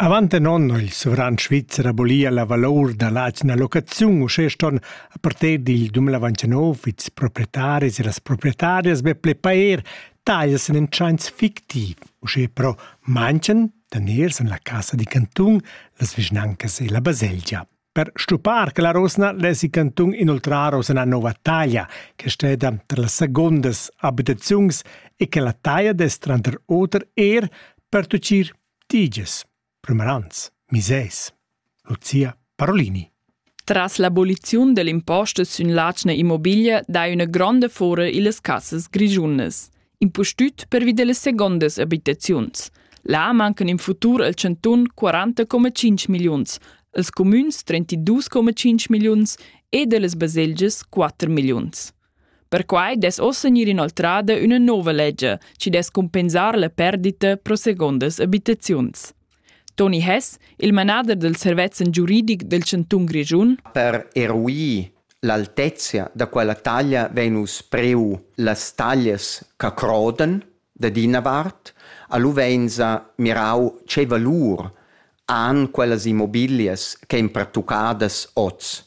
Avant in onn ha il sovran svizzer abolia la valor da l'atgna locaziun uschè ston a partir dil 2029 ils proprietaris e las proprietarias be ple pair taglias en in tschains fictiv, uschè però manchen daners en la casa di cantun, las vischnancas e la baselgia. Per stuppar che la rosna lesi cantun inoltrar oz ina nova taglia, che steda tra las secondas abitaziuns e che la taglia dess tranter oter er pertuccir diges, primarans, miseis. Lucia Parolini. Tras l'aboliziun dell'imposta sün l'atgna immobiglia dai üna gronda fora illas cassas grischunas. impustüt pervi dellas segondas abitaziuns. Là mancan in futur al Chanton 40,5 milliuns, als comüns 32,5 milliuns e dellas baselgias 4 milliuns. Perquai des ossa gnir inoltrada üna nova legge, ci des compensar la perdita pro segondas abitaziuns. Toni Hess, il manader dal servetsch giuridic del chantun Grischun. Per eruir l'altezia da quella taglia vein uss priu las taglias che crodan dad ina vart, a lu vein sa mirau tgei valur han quellas immobilias ch'ein pertuccadas oz.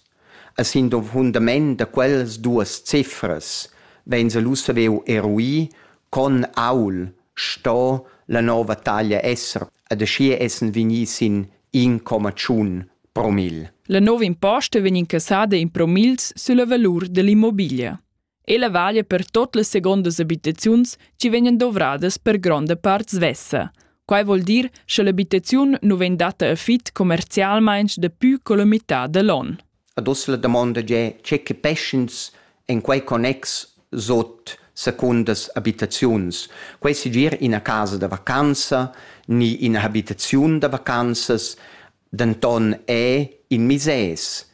A sin fundament da quellas duas cifras vegns lu saviu eruir con aul sto la nova taglia esser ed aschia essen vegni sin in comma tschun promil. La nova imposta vegn incassada in promils sulla valur dall'immobiglia. Ella vaglia per tot las segondas abitaziuns chi vegnan dovradas per gronda part svessa. Quai vuol dir cha l'abitaziun nu vegn datta a fit commercialmaing dapü co la mità da l'on. Ad uss la damonda è tge che peschens en quei connex sot secundas abitaziuns. Quei segir ina casa da vacanza ni ina habitaziun da vacanzas, denton è in misès,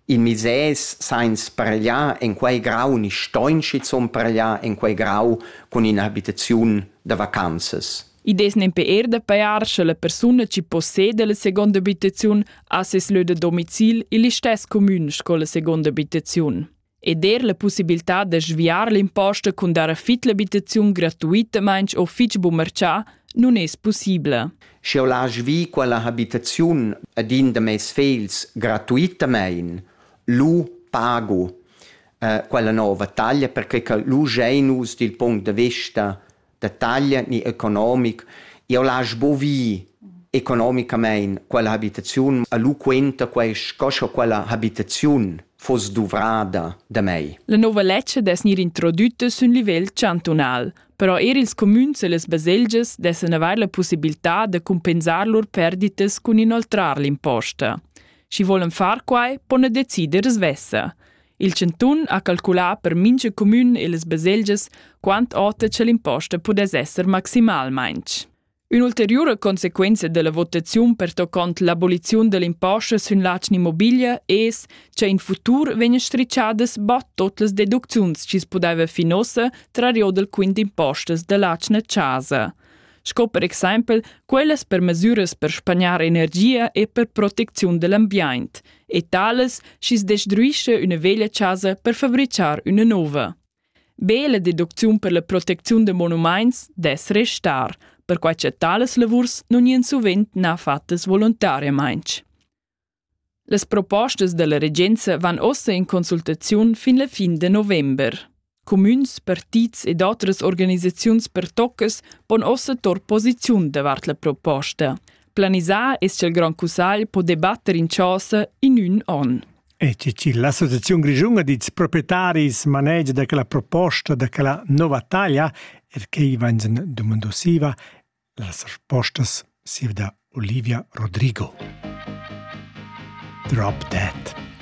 in misès sainz parliar en quei grau ni stoin schizun parliar en quei grau cun in'abitaziun da vacanzas. I des nempe er da pajar sche la persuna chi possede la seconda abitaziun ha ses lö da domicil ill istess comun sco la seconda abitaziun. ed er la pussibiltà da sviar l'imposta cun dar fit l'abitaziun gratuitamain o fitg bu marcià non es possibla. Sch'eu l'haj vi quella habitaziun ad in da meis fegls gratuitamaing, lu pagu uh, quella nova taglia perche cha lu giain nus dil punct da vista da taglia ni economic. Eu lasch bo vi economicamain quella habitaziun a lu quenta quai sco scho quella habitaziun foss duvrada da mei. La nova lezcha dess gnir introdütta sün livel chantunal, però eir ils cumüns e las baselgias dessan avair la pussibiltà da cumpensar lur perditas cun inoltrar l'imposta. Schi volan far quai, pon decider svessa. Il chantun ha calculà per mintga comün e las baselgias quant ota che l'imposta pudess esser maximalmain. Ün'ulteriura consequenza della votaziun pertoccont l'aboliziun dell'imposta sün l'atgna immobilia es che in futur vegn stricciadas bod tot las deducziuns chi pudeva fin ossa tra rio del quint impostas dell'atgna chasa. sco per exempel quellas per mesiras per spagnar energia e per protecziun dell'ambient e tales schi's destruisce üna veglia chasa per fabrichar üna nouva. Be la deducziun per la protecziun da monumaints dess restar, perquai che tales lavurs non ien suvent na fattas volontariamaing. Las propostas dalla regenza van ossa in consultaziun fin la fin de november. Cumüns, partits ed otras organisaziuns pertoccas pon ossa tor posiziun davart la proposta. Planisar es ch'el Grand Cussagl po debatter in chasa in ün on. E ceci l'Associazione Grigiunga dits proprietaris manegia da quella proposta da quella nova taglia, er che Ivansen domandosiva Las respostas sieva da Olivia Rodrigo. Drop dead.